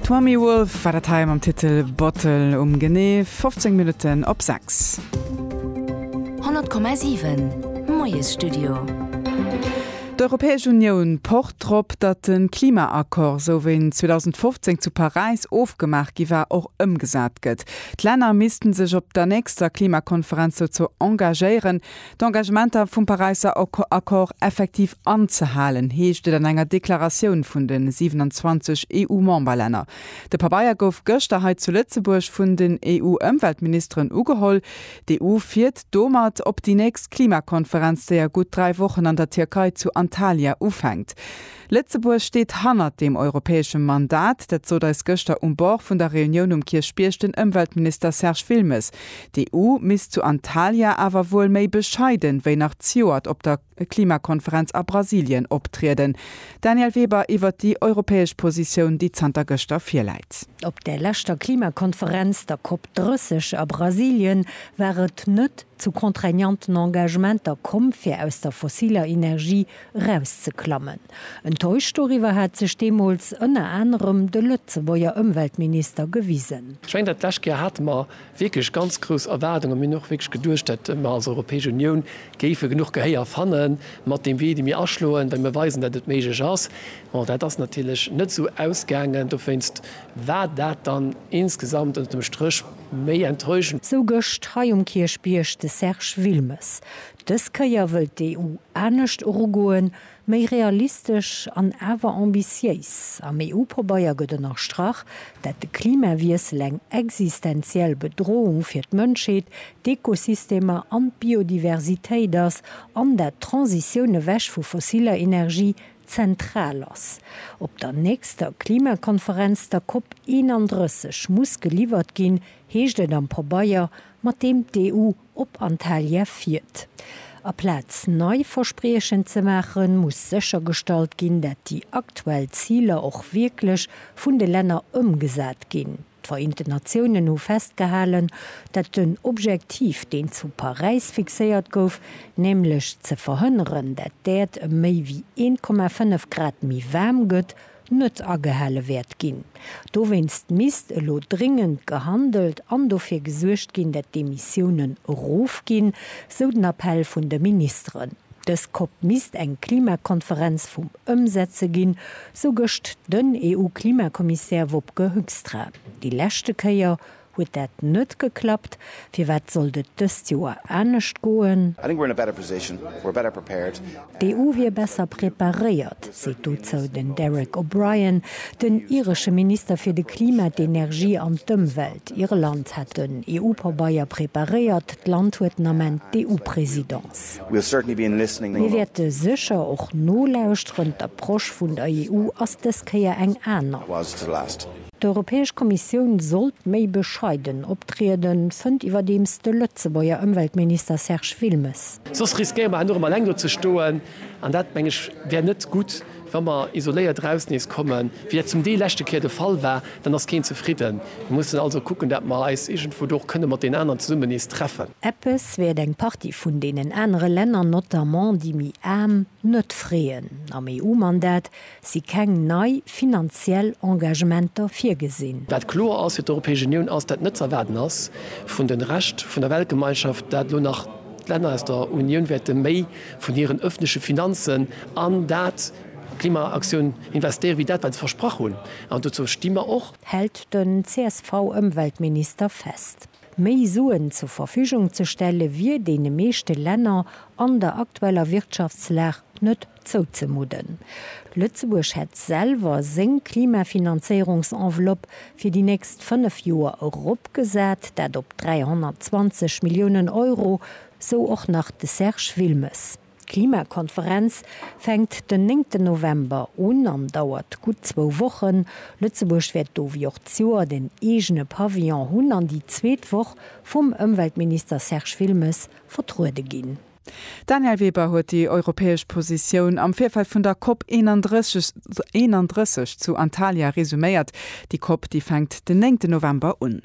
D'Mamie Wolf war dat hei mam Titel Bottle um genee 15 Minutten op 6. 100,7 Moiesstudio. D'Europäesch Unioun pocht drop, datt de Klimaaccord, esou wéi en 2015 zu Paräis ofgemaach gi war, och ëmgesat gëtt. D'Länner misste sech op der nächster Klimakonferenz dozou engagéieren, D'Engagementer vum Paräisser Accord effektiv anzehalen, heescht et an enger Deklaratioun vun de 27 EU-Memberlänner. De Pabeier gouf gëschter hei zu Lëtzebuerg vun den EU-Ëmweltministeren ugeholl. D'EU fiert domat op déi nächst Klimakonferenz, déi a gutt dräi Wochen an der Tierkei zu Antalya ufänkt. Lëtzebuerg steet hannert deem europäesche Mandat. Dat sot eis gëschter um Bord vun der Reunioun um Kierchbierg den Ëmweltminister Serge Wilmes. D'EU misst zu Antalya awer wuel méi bescheiden wéi nach zejoert op der Klimakonferenz a Brasilien optrieden. Danièle Weber iwwert déi europäesch Positioun, déi zanter gëschter virläit. Op der leschter Klimakonferenz, der Cop 30 a Brasilien, war et net zu contraignanten Engagementer komm, fir aus der fossiler Energie erauszeklammen. Enttäuscht doriwwer hat sech deemools ënner anerem de Lëtzebuerger Ëmweltminister gewisen. Ech mengen, dat lescht Joer hate mer wierklech ganz grouss Erwaardungen. Mir hunn och wierklech geduecht, datt mer als Europäesch Unioun géife genuch Gehéier fanne mat deem Wee, dee mir aschloen, well mir weisen, datt et méiglech ass. Bon, dat ass natierlech net esou ausgaangen. Dowéinst war dat dann insgesamt ënnert dem Stréch méi enttäuschend. Sou gëscht hei um Kierchbierg de Serge Wilmes. Dës Kéier wëllt d'EU anescht erugoen, méi realistesch an awer ambitiéis. Am EU-Pabeier gëtt ënnerstrach, dat de Klimawiessel eng existenziell Bedrohung fir d'Mënschheet, d'Ekosystemer an d'Biodiversitéit ass an dat d'Transitioun ewech vu fossiller Energie zentral ass. Op der nächster Klimakonferenz, der Cop 31, muss geliwwert ginn, heescht et am Pabeier, mat deem d'EU Op Antalya fiert. Aplaz nei Verspriechen ze maachen, muss séchergestallt ginn, dat déi aktuell Ziler och wierklech vun de Länner ëmgesat ginn. D'Vereenten Natiounen hu festgehalen, dat den Objektiv, deen zu Paräis fixéiert gouf, nämlech ze verhënneren, dat d'Äerd ëm méi wéi 1,5 Grad méi waarm gëtt, net agehale wäert ginn. Dowéinst misst elo dringend gehandelt an dofir gesuergt ginn, dat d'Emissiounen erofginn, sou den Appell vun de Ministeren. Dës COP misst eng Klimakonferenz vum Ëmsetze ginn, sou gëscht den EU-Klimakommissär Wopke Hoekstra. Déi leschte Kéier Huet dat net geklappt? Firwat sollt et dëst Joer anescht goen? D'EU wier besser preparéiert, seet dozou den Derek O'Brien, den iresche Minister fir de Klima, d'Energie an d'Ëmwelt. Irland hätt den EU-Pabeier preparéiert, d'Land huet den Ament d'EU-Presidence. Mir wäerte sécher och nolauschteren, d'Approche vun der EU ass dës Kéier eng aner. D'Europäesch Kommissioun sollt méi bescheiden optrieden, fënnt iwwerdeems de Lëtzebuerger Ëmweltminister Serge Wilmes. Soss riskéiere mer herno erëm alleng do ze stoen, an dat, meng ech, wär net gutt. Wa mer isoléiert eraus nees kommen, wéi dat zum Deel leschte Kéier de Fall war, dann ass keen zefridden. Mir mussen also kucken, dat mer eis iergendwou do och kënne mat deenen aneren zesummen nees treffen. Eppes wäert eng Partie vun deenen anere Länner, notamment déi méi aarm, net freeën. Am EU-Mandat si keng nei finanziell Engagementer virgesinn. Wat kloer ass fir d'Europäesch Unioun, ass dat net ze erwaarden ass vun de Rescht vun der Weltgemeinschaft, dat elo nach d'Länner aus der Unioun wäerte méi vun hiren öffentleche Finanzen an dat Klimaaktioun investéiere wéi dat wat se versprach hunn. An dozou sti mer och. Hält den CSV-Ëmweltminister fest. Méi Suen zur Verfügung ze stelle wier deene meeschte Länner an der aktueller Wirtschaftslag net Zouzemudden. Lëtzebuerg hätt selwer seng Klimafinanzéierungsenveloppe fir déi nächst fënnef Joer eropgesat, dat op 320 Milliounen Euro, sou och nach de Serge Wilmes. D'Klimakonferenz fänkt den néngten November un an dauert gutt zwou Wochen. Lëtzebuerg wäert do wéi och d'Joert en eegene Pavillon hunn an déi zweet Woch vum Ëmweltminister Serge Wilmes vertruede ginn. D'Danièle Weber huet déi europäesch Positioun am Virfeld vun der Cop 31 zu Antalya resuméiert. Déi Cop, déi fänkt den 9 November un.